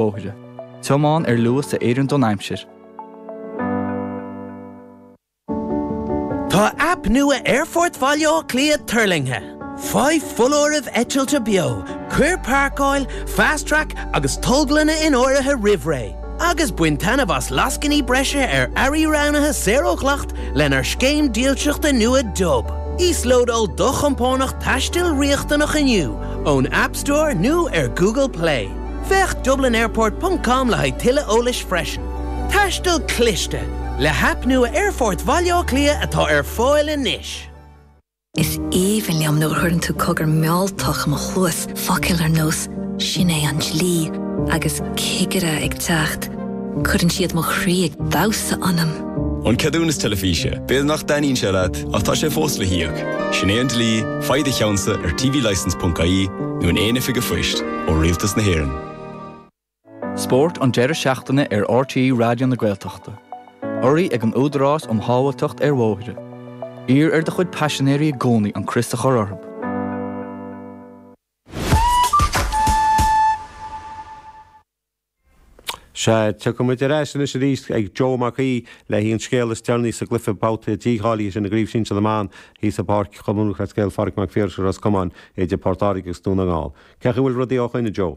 bóithre. Tiomáin ar luas a oireann don aimsir. Tá aip nua Aerfort Bhaile Átha Cliath tuirlingthe. Faigh foláirimh eitilte beo, cuir páirceáil, Fast Track agus tolglanna in áirithe roimh ré, agus bain taitneamh as lascainí breise ar earraí roghnaithe saor ó dhleacht lenár scéim dílseachta nua Dub. Íoslódáil do chompánach taistil riachtanach inniu ón App Store nó ar Google Play. Féach dublinairport.com le haghaidh tuilleadh eolas freisin. Taisteal cliste, le haip nua Aerfort Bhaile Átha Cliath atá ar fáil anois. Is aoibhinn liom nuair a chuireann tú cogar mealltach i mo chluas, focail ar nós 'Sin é an dlí' agus 'Cigire ag teacht', cuireann siad mo chroí ag damhsa ionam. An ceadúnas teilifíse, b'fhéidir nach dtaitníonn sé leat ach tá sé fós le híoc. Sin é an dlí, faigh do cheannsa ar tvlicence.ie nó in aon oifig an phoist. ó Rialtas na hÉireann. Spórt an deireadh seachtaine ar RTÉ Raidió na Gaeltachta. Urraithe ag an Údarás um Shábháilteacht ar Bhóithre. Iarr ar do chuid paisinéirí i gcónaí an crios a chur orthu. Sea, tiocfaimid ar ais anois aríst ag Joe Mac Aoidh leis an scéal is deireanaí sa gcluiche babhta dícháilithe sin i gCraobh Shinsir na mBan thíos i bPáirc Chumann Lúthchleas Gael Phádraig Mac Phiarais i Ros Comáin idir Port Láirge agus Dún na nGall. Cé chaoi bhfuil rudaí ó shoin, a Joe?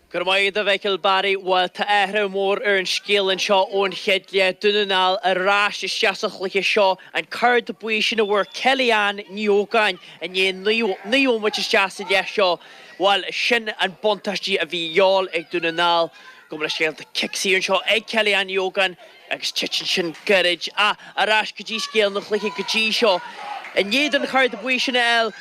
Go raibh maith agat, a Mhichael Barry. Bhuel, tá athrú mór ar an scéal anseo ón chéad leath. Dún na nGall ar ais isteach sa chluiche seo. An card buí sin a bhfuair Kelly-Ann Ní Ógáin i ndiaidh naoi mbomaite isteach sa leath seo Bhuel, sin an buntáistí a bhí gheall ag Dún na nGall go bhfuil an scéal, tá cic saor anseo ag Kelly-Ann Hogan agus titeann sin gairid. Ach ar ais go dtí scéal an chluiche go dtí seo. I ndiaidh don chard buí sin a fháil,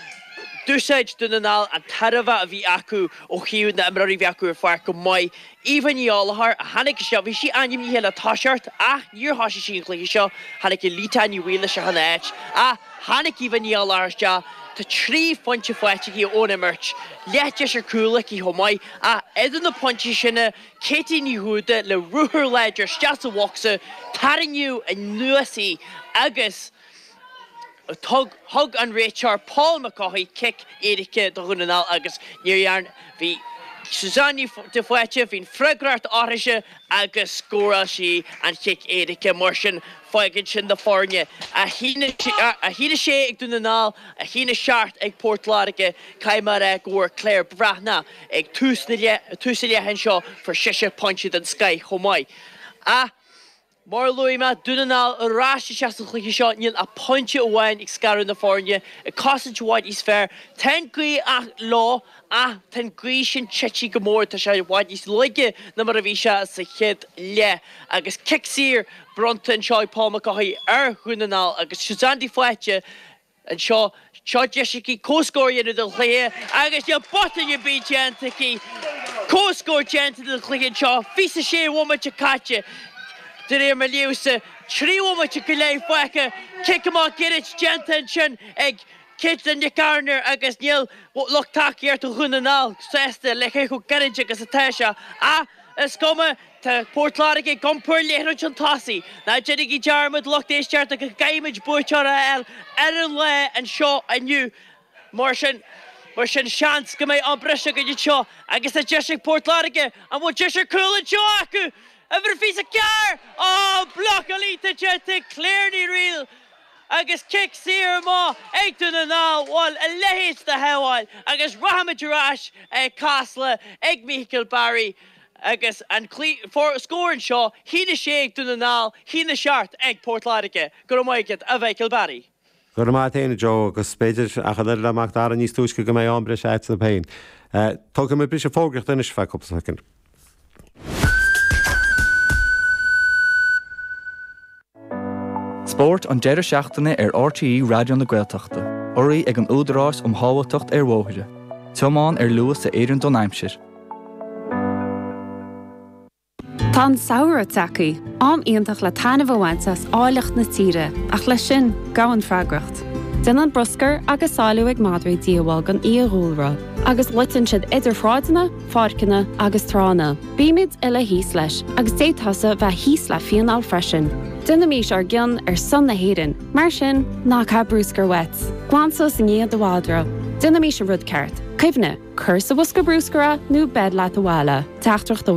d'úsáid Dún na nGall an tairbhe a bhí acu ó thaobh na n-imreoirí bhí acu ar an pháirc go maith. Eva Ní Ghallchóir a tháinig isteach. Bhí sí ainmnithe le toiseacht ach níor thoisigh sí an cluiche seo. Tháinig Ulitah Ní Bhaoill isteach ina áit ach tháinig Eva Ní Ghallchóir isteach. Tá trí phointe faighte aici ón imirt. Leath deis ar chúl aici chomh maith ach idir na pointí sin Katie Ní Dhúda le ruathar láidir isteach sa bhocsa, tarraingíodh anuas í agus Thug an réiteoir Paul McCaughey cic éirice do Dhún na nGall agus níor dhearna Bhí Suzanne de Faoite bhí an fhreagracht uirthise agus scóráil sí an cic éirice. Mar sin, fágann sin na foirne, 1-6 ag Dún na nGall, 1-7 ag Port Láirge. Caithfidh mé a rá go bhfuair Claire Bhreathnach ag tús na leithe seo, fuair sise pointe den scoith chomh maith. Mar a luaigh mé, Dún na nGall ar ais isteach sa chluiche seo, níl ach pointe amháin ag scaradh na foirne, ag cosaint i bhfad níos fearr. Tá an ghaoth leo, ach tá an ghaoth sin tite go mór, tá sé i bhfad níos laige ná mar a bhí sé sa chéad leath. Agus cic saor bronnta anseo ag Paul McCaughey ar Dhún na nGall agus Suzanne de Faoite Anseo, seo deis aici comhscór a dhéanamh den chluiche agus níl botún ar bith déanta aici. Comhscór déanta den chluiche anseo, 26 bhomaite caite, de réir mo ríomhsa, trí bhomaite go leith fágtha, cic amach gairid déanta ansin ag Caitlin Nic Gairnéir agus níl lucht tacaíochta Dhún na nGall sásta le cé chomh gairid agus atá sé. Ach is cuma. Tá Port Láirge ag iompar liathróid chun tosaigh. Ná déanaigí dearmad, lucht éisteachta, go gcaithfimid buaiteoir a fháil ar an lá anseo inniu mar sin mar sin seans go mbeidh am breise againn anseo agus tá deis ag Port Láirge an bhfuil deis ar cúl anseo acu! Uimhir fiche is a ceathair ó blocáil déanta ag Claire Ní Fhríl agus cic saor amach ag Dún na nGall bhuel a leithéid de shábháil agus rachaimid ar ais ag Casla ag Michael Barry Agus an scór anseo, a haon a sé ag Dún na nGall, a haon a seacht ag Port Láirge. Go raibh maith agat, a Mhichael Barry. Go raibh maith a't, a Joe, agus b'fhéidir, ach an oiread le Macdara níos túisce, go mbeidh am breise a'd féin. Tógfaidh mé briseadh fógraíochta anois ar feadh cúpla soicind. Spórt an deireadh seachtaine ar RTÉ Raidió na Gaeltachta. Urraithe ag an Údarás um Shábháilteacht ar Bhóithre. Tiomáin ar luas a oireann don aimsir. Tá an samhradh tagtha, am iontach le taitneamh a bhaint as áilleacht na tíre, ach leis sin, gabhann freagracht. Déanann bruscar agus salú ag madraí díobháil don fhiadhúlra, agus loiteann siad idir shráideanna, pháirceanna agus tránna. Bímid uile thíos leis agus d'fhéadfá-sa bheith thíos le fíneáil freisin. Déanaimís ár gcion ar son na hÉireann, mar sin, ná caith bruscar uait. Glan suas i ndiaidh do mhadra. Déanaimís an rud ceart. Cuimhnigh, cuir sa bhosca bruscair é nó beir leat abhaile. Teachtaireacht ó.